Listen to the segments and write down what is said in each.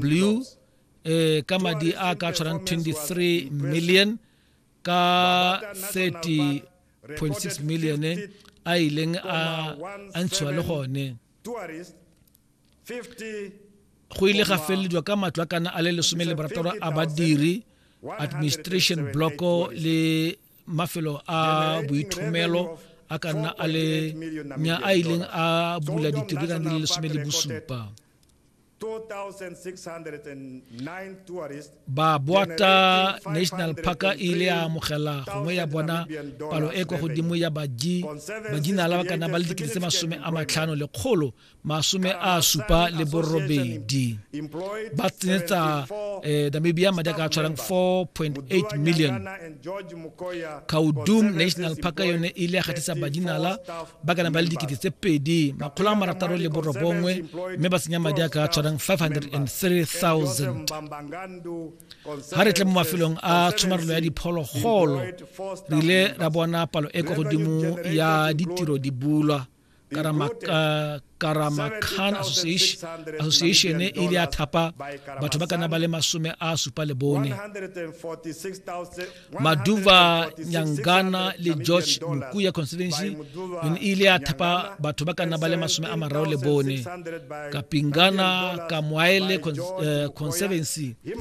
blue eh ka madi a ka tshwarang 23 million ka 30.6 million eh, a ileng a a ntshiwa le gone go ile ga felelediwa ka matlo a kana a le lesome le barataro a badiri administration blocko le mafelo a boithomelo a ka nna a le nya a ileng a bula ditirelo di le lesome le bosupa ba boata national park e ile ya amogela gongwe ya bona palo e kwa godimo ya baji bajinala ba kana ba le dikete tse masome a matlhano le kgolo masome a supa le borobedi ba tsenetsa eh, namibia madi a ka tshwarang 4.8 million kaudum national park yone e ile ya gatisa bajinala ba kana ba le dikete tse pedi makgolo a marataro le borobongwe mme ba senya madi a ka tshwarang 503000 ga re tle mo mafelong a tshomarelo ya diphologolo re ile ra bona palo e kwa godimo ya ditiro di bulwa karama khan association e ile ya thapa batho ba kana ba le masome a supa le bone maduva nyangana le george mokuya constituency yone e ile ya thapa batho ba kana ba le masome a mararo le bone kapingana kamwaele eh, conservancy e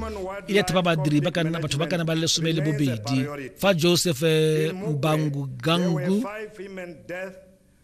ile ya thapa badiri batho ba kana ba le lesome le bobedi fa joseph eh, mbangu gangu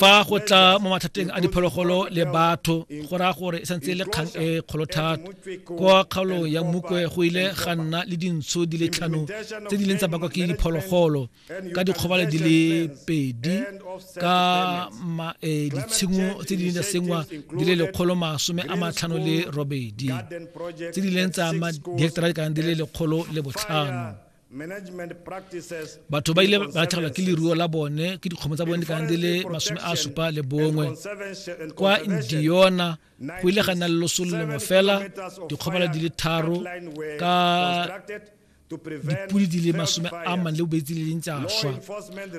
fa go tla mo mathateng a diphologolo le batho go raya gore e santse e le kgang e kgolo thata kwa kgaolong ya mokwe go ile ga nna le dintsho di le tlhano tse di leng tsa bakwa ke diphologolo ka dikgobalo di le pedi ka e, ditshimo tse di leng tsa sengwa di le lekgolo masome a matlhano le robedi tse di leng tsa diheketara di kana di le lekgolo le botlhano batho ba ile ba latlhegelwa ke leruo la bone ke dikgomo tsa bone di kana di le masome a supa le bongwe kwa indiona go ile ga nna le loso le lengwe fela dikgobala di le tharo ka dipodi di le masome a mang le bobetsi le leng tsa swa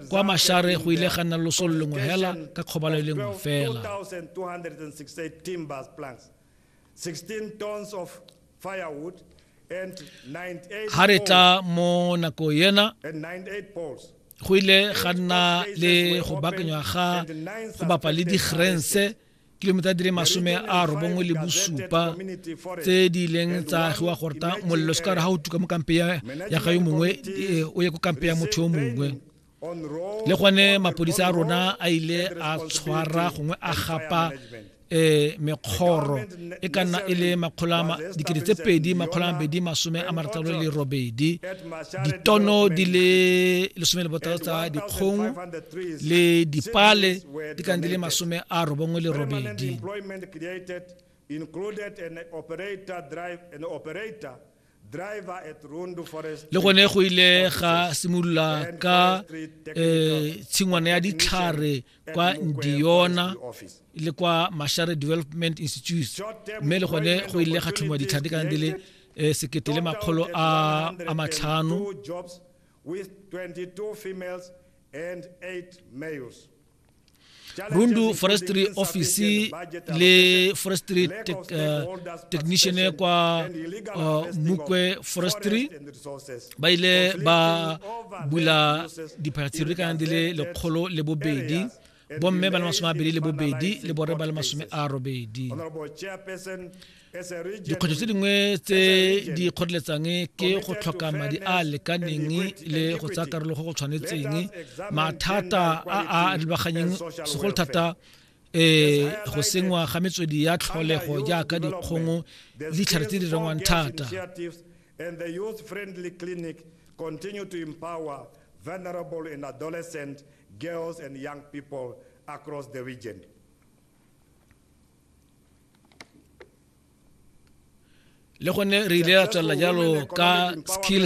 kwa mashare go ile ga nna loso le lengwe fela ka kgobalo e lengwe fela ga re tla mo nako ena go ile ga nna le go bakanywa ga go bapa le digrense kilomita di le masome a robongwe le bosupa tse di ileng tsa agiwa gorta molelo se ka gore ga o tuka mo kampe ya ga yo mongwe eh, o ye ko kampe ya motho yo mongwe le gone mapodisa a rona a ile a tshwara gongwe a gapa eh mekgoro e ka nna e le makgolo a dikete tse pedi makgolo a mabedi masome a marataro le robedi ditono di le lesome le botaro tsa dikgong le dipale di ka di le masome a robongwe le robedi included an operator drive an operator le gone go ile ga simolola ka um tshingwana ya ditlhare kwa ndiona le kwa mashare development institute mme le gone go ile ga tlhomiwa ditlhare di kana di le um sekete le makgolo a matlhano Rundu Forestry Office le Forestry tech, uh, Technician kwa uh, Mukwe Forestry ba ile ba bula diphatsiri ka di le lekgolo le bobedi bomme ba le masome a bedi le bobedi le bore ba le masome a robedi dikgwetlho tse dingwe tse di kgoreletsang ke go tlhoka madi a a lekaneng le go tsaya karolo go go tshwanetseng mathata a a lebaganyeng segolo thata eh go sengwa ga metswedi ya tlholego jaaka dikgongo ditlhare tse di rengwang thata and the youth friendly clinic continue to empower vulnerable and adolescent girls and young people across the region le gone re ile ra tswelela jalo ka skills